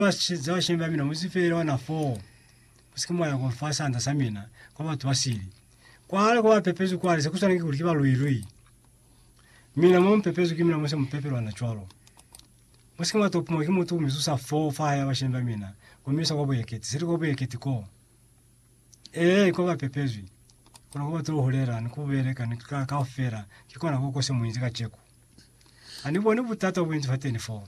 Ba za shemi ba mina mu zipele ona foo, ku si ke mwa ya kwa fa sanda sa mina, kwa batu ba sili. Kwale kwa pepezwi kwale, se ku swaneki kuli ki ba lwi-lwi. Mina mo mu pepezwi ki mina mo se mu pepelwa na cwalo. Mu si ke mwa topiwa ki mutu ku mi zusa foo fa ya ba shemi ba mina, ku mi isa kwa buyeketi. Seli kwa buyeketi koo. Ee, kwa ba pepezwi. Kona kwa ba to hulela, ni ku beleka, ni ka, kaufela, ki kona ko ko se mu inzi kaceku. Ha ni boni butata bo bu inzi fateni foo.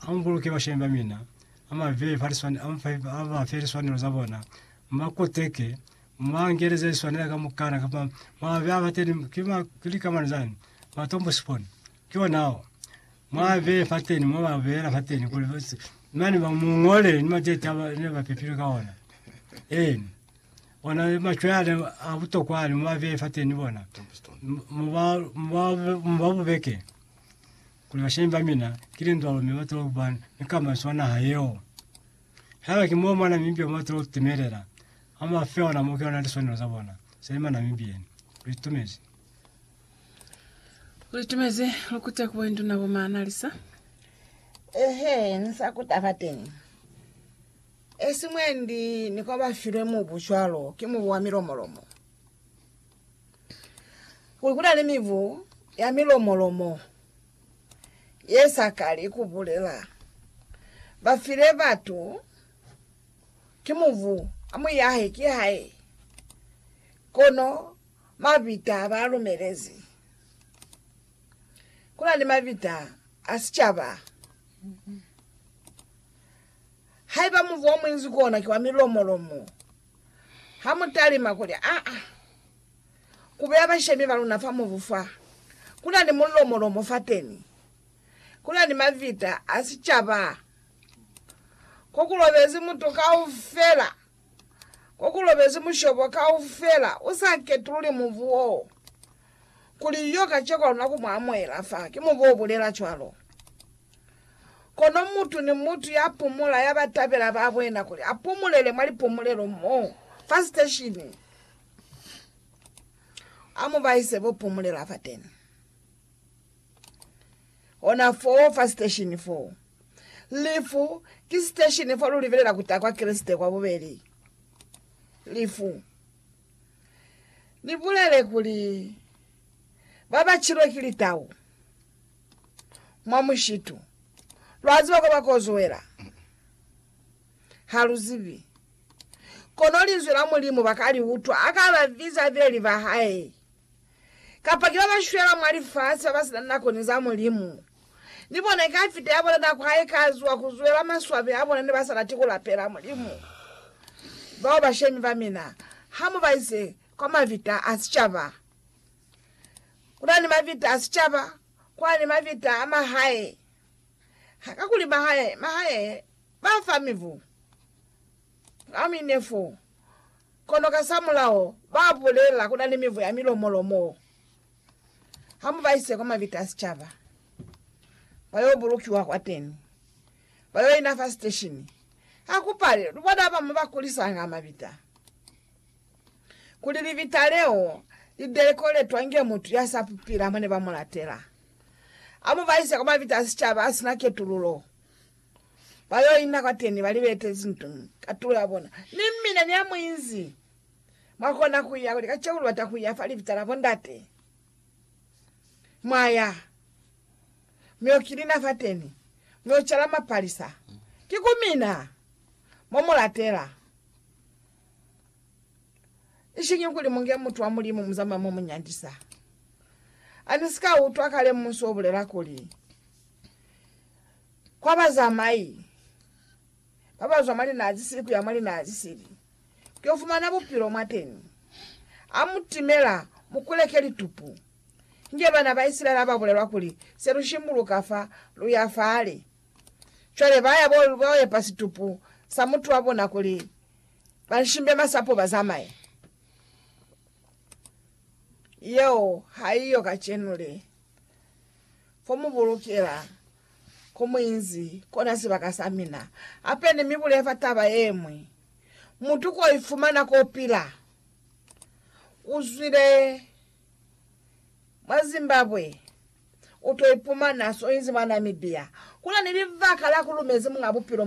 Ambuluke bashemi ba mina, amabeye fa liswanelo, amufe, abafe liswanelo za bona, mubakoteke, mubaangeleze liswanela ka mukana, kapa mwabe abateni, ki ma, ki likamano zani, matombo siponi, ki ona ao, mwabeye fateni, mwababeyela fateni, kuli basi, mani ba mungole ni matete aba ne bapepilwe ka ona, eni, ona ni machwe ale a butokwa ale, mwabeye fateni bona, Mu- muba, muba, mubabubeke, Kuli bashañi ba mina ki lindwalo mi ba tolo kuba ni kamanso mwa naha yeo. Haiba ki moo mwa Namibia mo ba tolo kutimelela, ha mwa fe ona moo ki ona liswanelo za bona za ima Namibieni. Lu itumezi. Lu itumezi lu kute ku boinduna bo Maanalisa. Ehe, ni sa kuta fateñi. Esi mwendi ni kwa ba filwe mubu cwalo ki mubu wa milomolomo. Kuli ku na ni mibu ya milomo-lomo ye sa kali ku bulela. Ba file batu ki mubu, a mu yahe ki hae, kono mabita a ba lumelezi. Ku na ni mabita a sicaba. Haiba mubu o munzi ku ona ki wa milomo-lomo, Ha mu talima kuli, Aa, ku beya bashemi ba luna fa mubu fa, ku na ni mulomolomo fateni, ku na ni mavita a sicaba, ko ku lobezi mutu kaufela, ko ku lobezi mushobo kaufela, u sa ketululi mubu wo, kuli yo kaceko ha luna ku mu amuhela fa. Ki mubu o bulela cwalo. Kono mutu ni mutu ya pumula ya ba tabela ba bwena kuli a pumulele mwa lipumulelo mo fa siteshini, a mu ba ise bo pumulela fateni. Ona foo fa siteshini foo. Lifu ki siteshini fa lu libelela ku ta kwa Kreste kwa bubeli. Lifu. Ni bulele kuli, Ba ba chilwe ki litau. mwa mushitu. Lwa ziba kwa ba kozuela? Ha lu zibi. Kono Linzwi la Mulimu ba ka li utwa ha ka ba biza bileli ba Hae. Kapa ki ba ba shwela mwa lifasi ba ba si na nako ni za Mulimu, ni bona i ka fita ya bona nako ha i ka zuwa ku zuela maswabi a bona ne ba sa lati ku lapela Mulimu. Bao bashemi ba mina, ha mu ba ise kwa mavita a sicaba. Kuna ni mavita a sicaba, kuna ni mavita a mahae. Kakuli mahae, mahae ba fa mibu ka mine fo, kono kasamulaho ba bulela kuna ni mibu ya milomo-lomo. Ha mu ba ise kwa mavita a sicaba, ba yo bulukiwa kwateni, ba yo ina fa siteshini. Ha ku pale, lu bona ba bamwi ba kulisanga mavita. Kuli libita leo lideleko letwa inge mutu ya sa pupila mone ba mulatela, amu baisa kwa mabita a sicaba asina ketululo, ba yo ina kwateni ba libete zintu katulo ya bona. Ni mina ni amuinzi mwa kona kuya kuli kacenu lubata kuya fa libita la bondate, mwaya mi yo kilina fateni, mi yo cala mapalisa. Ki ku mina mo mulatela. Ishiñi kuli munge mutu wa Mulimu muzama mo munyandisa. Ani sika utwa kale musu obulela kuli, Kwa bazamai babazwa mwa linaa zisili kuya mwa linaa zisili, kuyo fumana bupilo mwateni. Amutimela, mukuleke litupu. Inge bana ba Isilaele ababulelwa kuli, Selushimbuluka fa, luya fale, Cwale ba ya bo ba yo epa situpu sa mutu wa bona kuli ba nshimbe masapo ba zamaye. Yeo ha iyo kacenu le. Ko mu bulukela, ko mu inzi, kona sibaka sa mina. Hape ni mi bulele fa taba yemwi. Mutu ko ifumana ko pila. U zwile mwa Zimbabwe. u to ipumana so inzi mwa Namibia. Ku na ni libaka la ku lumezi Muñ'a Bupilo mwa